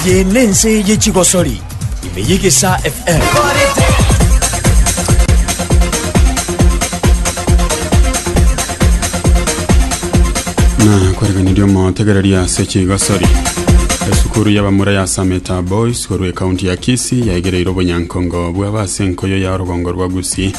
Eye nense ye chigosori ime y'egesaa FM. na kwereganiria omotegereria ase chigasori esukuru y'abamura ya sameta boys korwa ekaunti ya kisi yaigereire obonyankongo bw'aba ase enkoyo ya orogongo rwa gusii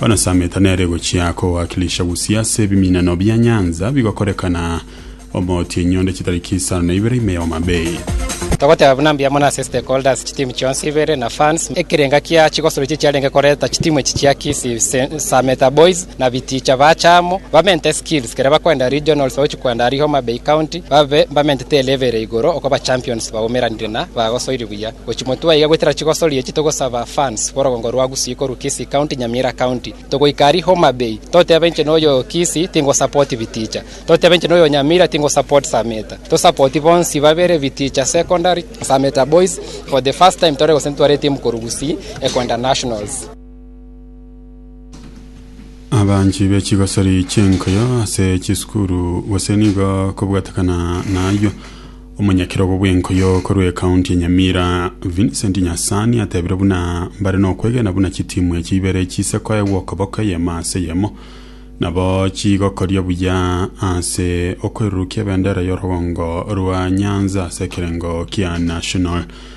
Bono Sameeta nere gochia kowakilisha Busia ase ebiminano bia nyanza bigokorekana omooti enyundo chitari chisano na ibere ime y'Homa Bay. Togoteba buna mbuya mono ase stakeholders chitimu chionsi ibere na fans ekerenga kia chigosoro echi chiarenge koreta chitimu echi chia Kisii Sameta Boys na biticha bacha amo bamente skills kere bakwenda regionals bagochi kwenda aria Homa Bay County babe bamentete elevel eye igoro okobachampions baumeranire na bagosoiri buya. Gochi motwe aiga goetera chigosori echi togosaba funds borogongo rwa Gusii korwa Kisii county Nyamira county togoika aria Homa Bay toteba inche noyo Kisii tingo support biticha toteba inche noyo Nyamira tingo support Sameta to support bonsi babere biticha secondary Sameta boys for the first time tore gose ntware etimu korwa Gusii ekwenda nationals. abanchi be chigosori chi'enkuyo ase chisukuru gose nigo kobwatekana na ayio omonyakerogo bw'enkuyo korwa ekaunti ya nyamira vincent nyasani atebire buna mbare nokwegena buna chitimu echi ibere chise koegwa okoboko eyemo ase eyemo nabo chigokoria buya ase okwerurukia ebendera y'orogongo rwa nyanza ase ekerengo kia national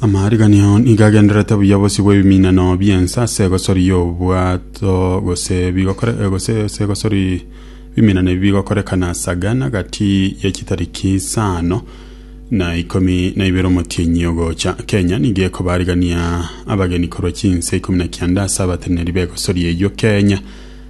Amariganio nigo agendererete buya bosi bw'ebiminano bi'ense ase egosori y'obwato gose bigokore eh, gose ase egosori biminano ebi bigokorekana sagana gati ye chitariki isano na ikomi na ibere omotienyi ogocha. Kenya nigo ekobarigania abageni korwa chinse ikomi na kianda ase abateneneri b'egosori eyio Kenya.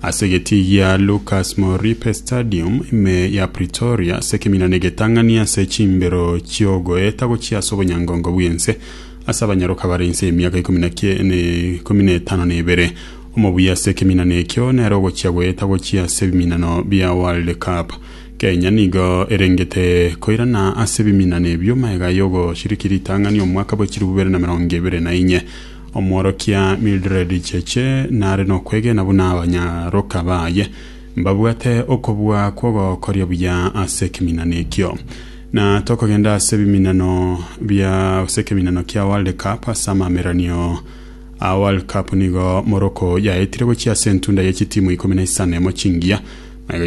Ase egetii gia Lukas Moripe Stadium, ime ya Pretoria, ase ekeminano egetang'ani ase chimbero chi'ogoeta gochia ase obonyangongo bw'ense ase abanyaroka bare inse y'emiaka ikomi na kie- ne- ikomi na etano na ebere. Omobuya ase ekeminano ekio nere ogochia goeta gochia ase ebiminano bia World Cup. Kenya nigo erengete koirana ase ebiminano ebio maega y'ogoshiriki ritang'ani omwaka bwe chilifu bibere na emerongo ebere na inye. Omworokia Mildred Cheche nare nokwegena buna abanyaroka baye mbabwate okobua kw'ogokoria buya ase ekeminano ekio. Na tokogenda ase ebiminano bia ase ekeminano kia World Cup ase amameranio a World Cup nigo Morocco yaetire gochia ase entunda ye chitimu ikomi na isano emo chingiya na iga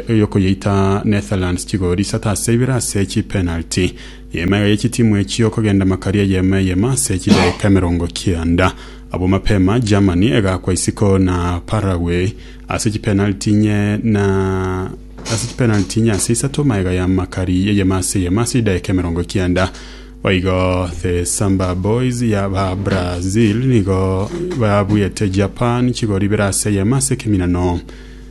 yokoyeita Netherlands chigori isato ase ibere ase chipenalty Y'eema eye y'echitimu echio kogenda makari eyemo eyemo ase chidaeka emerongo kianda. Abwo mapema Germany egakwa isiko na Paraguay ase chipenaliti inye na ase chipenaliti inye ase isato maega ya makari eyemo ase eyemo ase chidaeka emerongo kianda. Boigo the Samba Boys ya ba Brazil nigo babuete Japan chigori ibere ase eyemo ase ekeminano.